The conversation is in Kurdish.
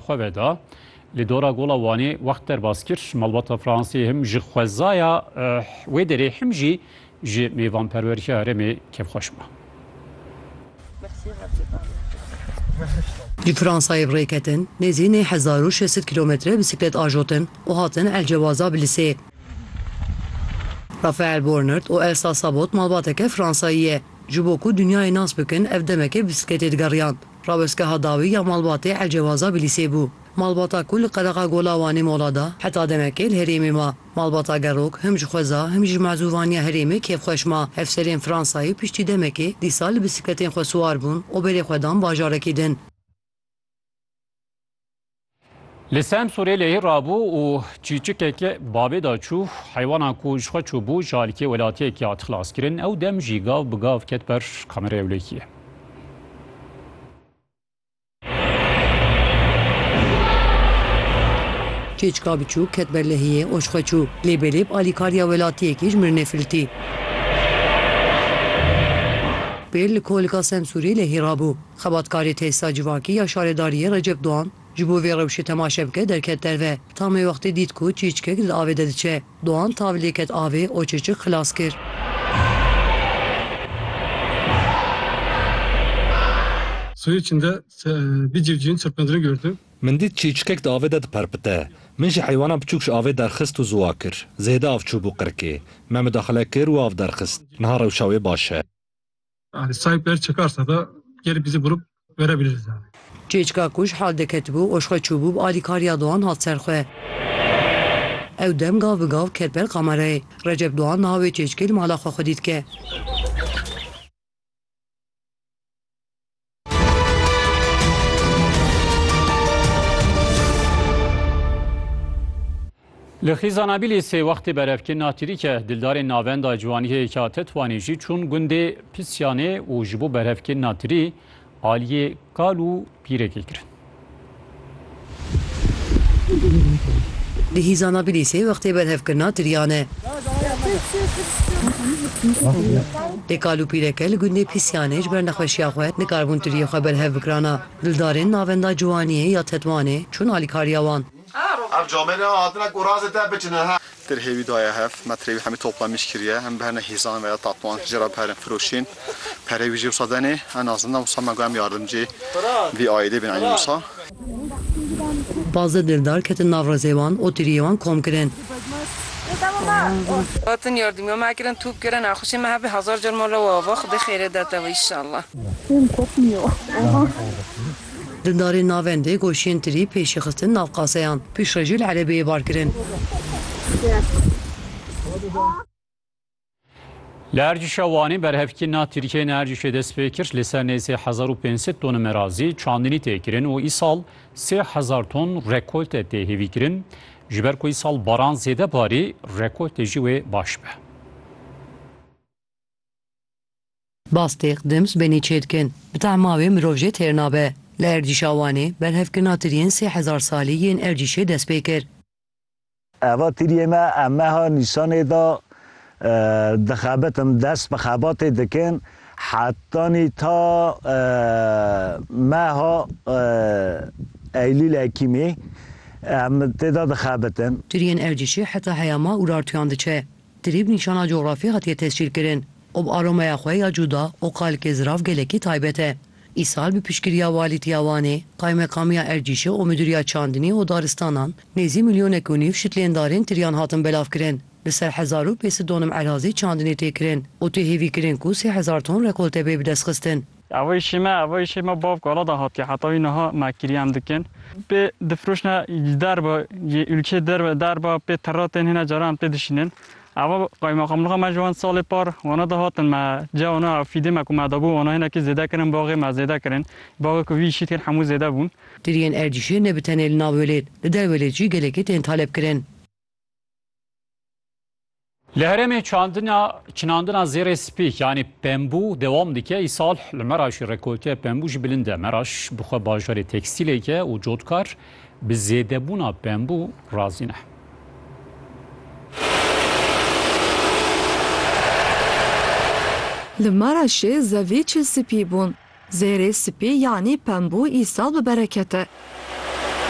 Xwe veda. Li dora Gola Wanê wext derbas kir, malbata Fransê him ji xwezaya wê derê him jî ji mêvanperwerîya herêmê kêfxweş ma. Li Fransayê bi rê ketin, nêzî nê hezar û şêst sed kîlometre bîsîklet ajotin û hatin El Cewaza bi lisê. Rafael Bornert û Elsa Sabot malbateke Fransayî ye. Ji bo ku dinyayê nas bikin ev demekê bi bîsîkletê digeriyan. Rawestgeha dawî ya malbatê Elcewaza bi lîsê bû. Malbata ku li qelexa Gola Wanê mola da, heta demekê li herêmê ma. Malbata Gerok him ji xweza him jî ji mezûvaniya herêmê kêfxweş ma. Hevserên Fransayê piştî demekê dîsa li bisikletên xwe siwar bûn û berê xwe dan bajarekî din. Li Semsûrê lehî rabû û çîçikeke bavê da çû. Heywanan ku ji xwe çûbû ji alîkê welatiyekê hat xilaskirin. Ew dem jî gav bi gav ket ber kameraya ewlehiyê. Çîçika biçûk ket ber lehiyê û ji xwe çû. Lêbelêb alîkariya welatiyekî ji mirinê filtî. Pêl li kolika Semsûrê lehî rabû. Xebatkarê Têsîta Civakî ya Şaredariyê Recep Doğan ji bo vê rewşê temaşe bike derket derve. Tamê wextê dît ku çîçikek li avê de diçe. Doğan tav lê ket avê o çîçik xilas kir. Suyê içinde bir civcivin çırpındığını gördüm. Min dît çîçikek di avê de diperpite. Min jî heywana biçûk ji avê derxist û ziwa kir. Zêde av çûbû qirkê. Me midaxile kir û av derxist. Niha rewşa wê baş e. Yani sahipler çıkarsa da gelip bizi bulup verebiliriz yani. Çêçka ku ji hal diketibû û ji xwe çûbû bi alîkariya Doğan hat ser xwe. Ew dem gav bi gav ket ber kamerayê. Recep Doğan niha wê çêçkê li mala xwe xwedî dike. Li Xîzanabîlê sê wextê berevkirina atirîke dildarên navenda Ciwanîhêyeke Tetwanê jî çûn gundê Pisyanê û ji bo berevkirina tirî aliyê kal û pîrekê kirin. Di hîzana Bilîsê wextê berhevkirina tiriyan e. Lê kal û pîreke li gundê Pîsyanê ji ber nexweşiya xwe nikarbûn tiriyê xwe berhev bikirana. Dildarên navenda Ciwaniyê ya Tetwanê çûn alîkariya wan. Ev camê ne hatine ku razê te biçine he. Tirhê wî daye hev metrê wî hemî topla mîş kiriye. Em bi hene hîzan ve ya tatoan jê re biherin firoşîn. Perê wî jê wisa denê. Em naxizin ne wisa me got em yardimcê vî aîdê bên enî wisa. Pazdeh dildar ketin nav rezê wan û tiriyê wan kom kirin. Hatin yardimiya me kirin top kirin nexweşê me hebê hezar car mala we ava xwedê xêrê de te we inşallah. Dindarên navendê goşiyên tirî pêşî xistin nav qaseyan. Pêşrejî li erebeyê bar kirin. Li Ercişa Wanê berhevkî na Tirkiyeyê ne Ercişê dest pê kir. Li ser nêzî hezar û pênc sed toni merazî çandinî tê kirin û îsal sê hezar ton rekolte tê hêvîkirin. Ji ber ku îsal baran zêde barî, rekoltê jî wê baş be. Bastêk dim sibênê çêdikin. Bi tehma wê mirov jê têr nabe. Li erdîşa Wanê, berhevkirina tiriyên sê hezar salî yên erdîşê dest pê kir. Eva tiriyê me em meha Nîsanê de dixebitin, dest bi xebatê dikin hetanî ta meha Eylûl-Ekîmê em tê de dixebitin. Tiriyên erdîşê heta heyama Urartuyan diçe. Trîb nîşana coxrafî hatiye tescîlkirin û bi aromeya xwe ya cuda û kalikê zirav gelekî taybet e. Îsal bi piştgiriya Walîtiya Wanê, Qaymekamîya Ercîşê û Midûriya Çandinî û Daristanan nêzî milyonek û nîv şitlêndarên tiryan hatin belavkirin. Li ser hezar û pêsî donim erazî çandinê tê kirin û tê hêvîkirin ku sê hezar ton rekolte bê bidestxistin. Evo îşê me, evo îşê me bav gala de hatiye heta wî niha me kirî em dikin. Pê difiroşne li derve yê ûlkeyê derve derve pê terra tên hîne caran pê dişînin. Evo qaymeqamlixa me ji wan salê par wana de hatin me cih wana ev fîdê me ku me dabû wana hinekî zêde kirin baxê me zêde kirin. Baxê ku vî îşî tên hemû zêde bûn. Tiriyên erdîşê ne bi tenê li navê lê li derve lê jî gelekî tên talebkirin. Li herêmê çinandina zêrê spî yanî pembû dewam dike. Îsal li Meraşî rekolteya pembû jî bilind e. Meraş bi xwe bajarê tekstîlê ye û cotkar bi zêdebûna pembû razî ne. Li Meraşê zevî çil spî bûn. Zêrê spî yanî pembû îsal bi bereket e.